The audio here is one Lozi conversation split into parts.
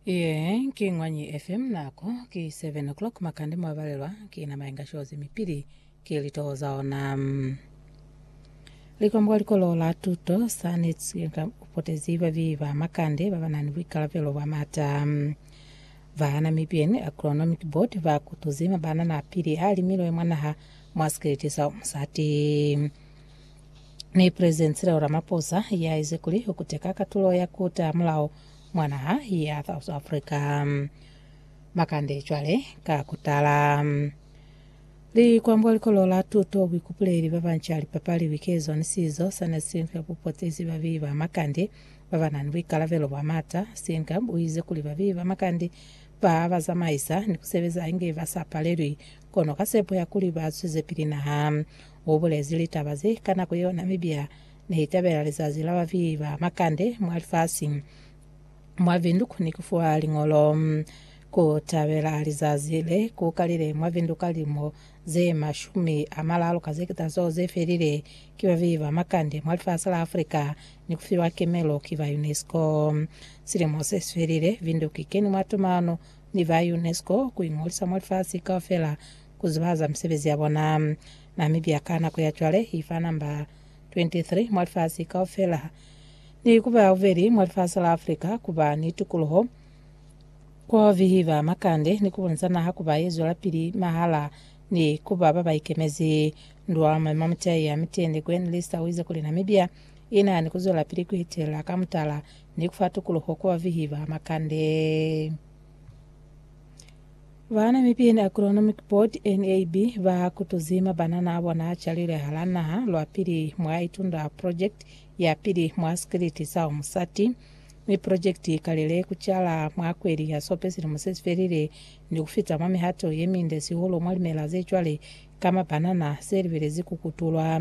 Iye ki Ngwanyi FM nako ki 7 o'clock makande mwabalelwa ki nama inga shozi mipili ki litoho za ona. Likwambo kwa likolo la tuto sanitsi inga upotezi babi ba makande ba banani buikalabelo bwa mata. Ba Namibian Agronomic Board ba kutuzi mabanana apili a limilwe mwanaha mwa sikeleti sa umusati. ni President Cyril Ramaphosa ya ize kuli u kuteka katulo ya ku ta mulao mwa naha ya South Africa. Makande cwale ka ku tala. Likwambo likolo la tuto buikupuleli ba banca lipapali bikeezwa ni sizo sa ne si nka bupotezi ba bii ba makande ba ba na ni buikalabelo bwa mata. Steenkamp u ize kuli ba bii ba makande ba ba zamaisa ni ku sebeza inge ba sa palelwi kono ka sepo ya kuli ba zwezepili naha. U bulezi litaba ze ka nako yeo Namibia ne i tabela lizazi la bavihi ba makande mwa lifasi. Mwa Vinduk ni ku fuwa liñolo. Ku tabela lizazi le ku kalile mwa Vinduk ka lilimo ze mashumi a malalu ka ze keta zeo ze felile ki bavihi ba makande mwa lifasi la Africa ni ku fiwa kemelo ki ba UNESCO. Silimo se si felile, Vinduk i keni mwa tumano ni ba UNESCO ku iñolisa mwa lifasi kaufela ku zibahaza misebezi ya bona. Namibia ka nako ya cwale i fa namba 23 mwa lifasi kaufela, ni ku ba ya bubeli mwa lifasi la Africa ku ba ni tukuluho, ku bihiba makande, ni ku bonisa naha ku ba ye zwelapili mahala ni ku ba ba ba ikemezi. Ndwa Moema-Mutai ya Mitende Gwen Lyster uize kuli Namibia i na ni ku zwelapili ku itelela ka mutala ni ku fa tukuluho ku ba bihiba makande. Ba Namibian Agronomic Board, NAB, ba kutuzi mabanana a bona a calilwe hala naha lwa pili mwa Itunda Project ya pili mwa sikiliti sa Umusati, mi project i kalile ku cala mwa kweli ya Sope silimo se si felile ni ku fita mwa mihato ye minde sihulu mwa limela ze cwale ka mabanana se libelezi ku kutulwa.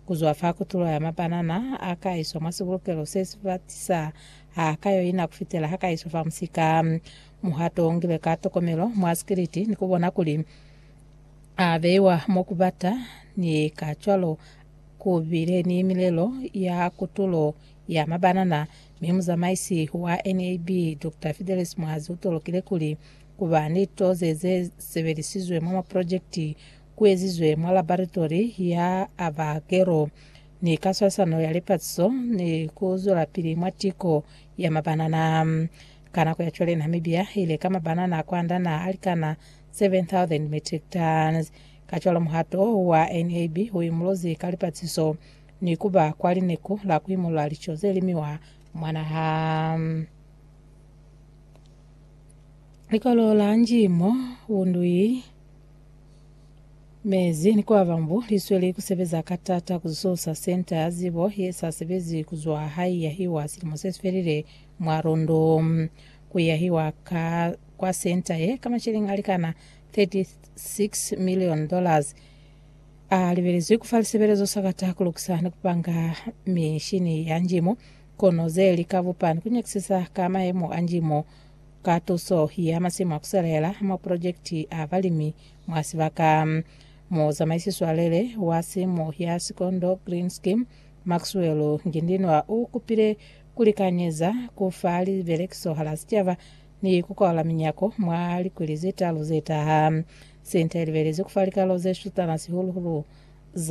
Ku zwa fa kutulo ya mabanana a ka iswa mwa sibulukelo se si batisa ha ka yoina ku fitela ha ka iswa fa musika. Muhato u ngilwe ka tokomelo mwa sikiliti ni ku bona kuli a beiwa mo ku bata, ni kacwalo ku bile ni milelo ya kutulo ya mabanana, mi muzamaisi wa NAB, Doctor Fidelis Muhazi u tolokile kuli ku ba ni toze ze sebelisizwe mwa maprojekiti ku ezizwe mwa laboratori ya Avagero ni ka swalisano ya lipatiso ni ku zwelapili mwa tiko ya mabanana. Ka nako ya cwale Namibia i leka mabanana kwand'a naha a likana 7,000 metric tons. Kacwalo muhato u wa NAB u imuluzi ka lipatiso ni ku ba kwa lineku la ku imulula lico ze limiwa mwa naha. Likolo la Njimo u Ndui mezi ni kuba bambu li sweli ku sebeza ka t'ata ku zusa Senta ya Zibo ye sa sebezi ku zwa ha i yahiwa silimo se si felile. mwa lundu ku yahiwa ka kwa senta ye ka masheleng a likana 36 million dollars a libelezwi ku fa lisebelezo sa kata ku lukisa ni ku panga mishini ya njimo kono ze li ka bupa ni ku nyakisisa ka mayemo a njimo ka tuso ya masimu a ku selela mwa projekiti a balimi mwa sibaka. Muzamaisi swalele wa simu ya Sikondo Green Scheme, Maxwell Ngindinwa u kupile ku likanyeza ku fa libelekiso hala sicaba ni ku kwaula minyako mwa likwili ze talu ze taha. Senta i libelezi ku fa likalo ze shutana sihulu-hulu za.